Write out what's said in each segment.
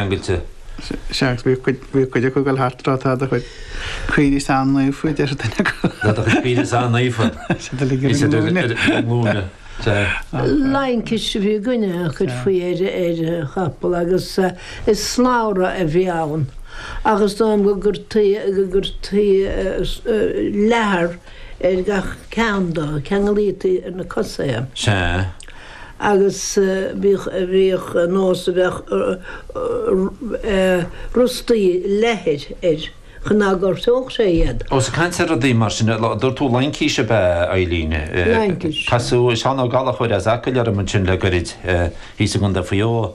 ceangailte. Seans go bhfuil cuid acu ag dul thart ag rá, tá do chuid caoirigh an-naofa, a deir duine acu. Tá do chuid caoirigh an-naofa, is iad ar a nglúine. Laincis a bhí againne a chuirfí ar an chapall agus is slabhra a bhí ann agus is dóigh liom go gcuirtí leathar ar gach ceann de, ceanglaítí ar na cosa é. Sea. agus bhíodh nós a bheadh rostaí leathair air chun nach ngortódh sé iad. Ós ag caint ar rudaí mar sin, dúirt tú laincís ab ea Eileen? Laincís. Casadh Seán Ó Gallachóir as Acaill orm ansin le goirid, thíos i gContae Mhaigh Eo.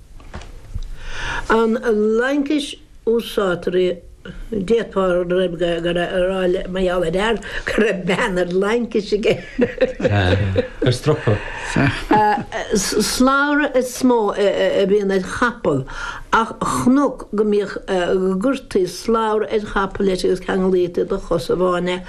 An laincis úsáidtear í, d'fhéadfá a rá mar gheall ar fhear go raibh bean ar laincis aige. Ar stropa. Slabhra is mó a bhíonn ar chapall, ach chonac go mbíodh gcuirtí slabhra ar chapall leis agus ceanglaítí de chos amháin é.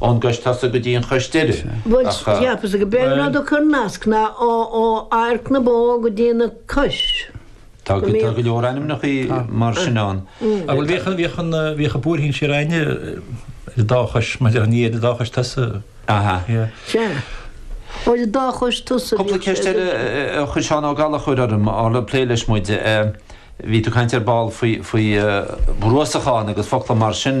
Ón gcois tosaigh go dtí an chois deiridh. Bhuel cheapas go mb'fhéidir go raibh cornasc ná ó adharc na bó go dtí an chois. Tá go leor ainmneacha mar sin ann. Ach bhuel bhíodh bhíodh an buairthín siar aithne ar dá chois maidir lena dhiaidh, ar dá chois tosaigh. Aha. Sea. Ó ar dá chois tosaigh. Cúpla ceist eile a chuir Seán Ó Gallachóir orm á le plé leis muid. Bhí tú ag caint ar ball faoi bhruasachán agus focla mar sin.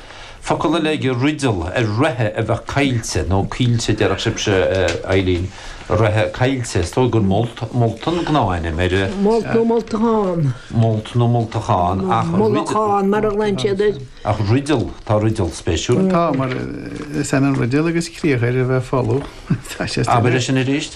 Focal eile aige Riddle ar reithe a bheadh coillte, nó coillte déarfadh sibhse, Eileen, reithe coillte. Is dóigh gur molt, molt an gnáthainm air. Molt nó moltachán. Molt nó moltachán, ach. Molachán, mar a ghlaonn siad air. Ach Riddle, tá Riddle spéisiúil. Tá, mar is ionann Riddle agus criathar a bheith folamh. Abair é sin arís.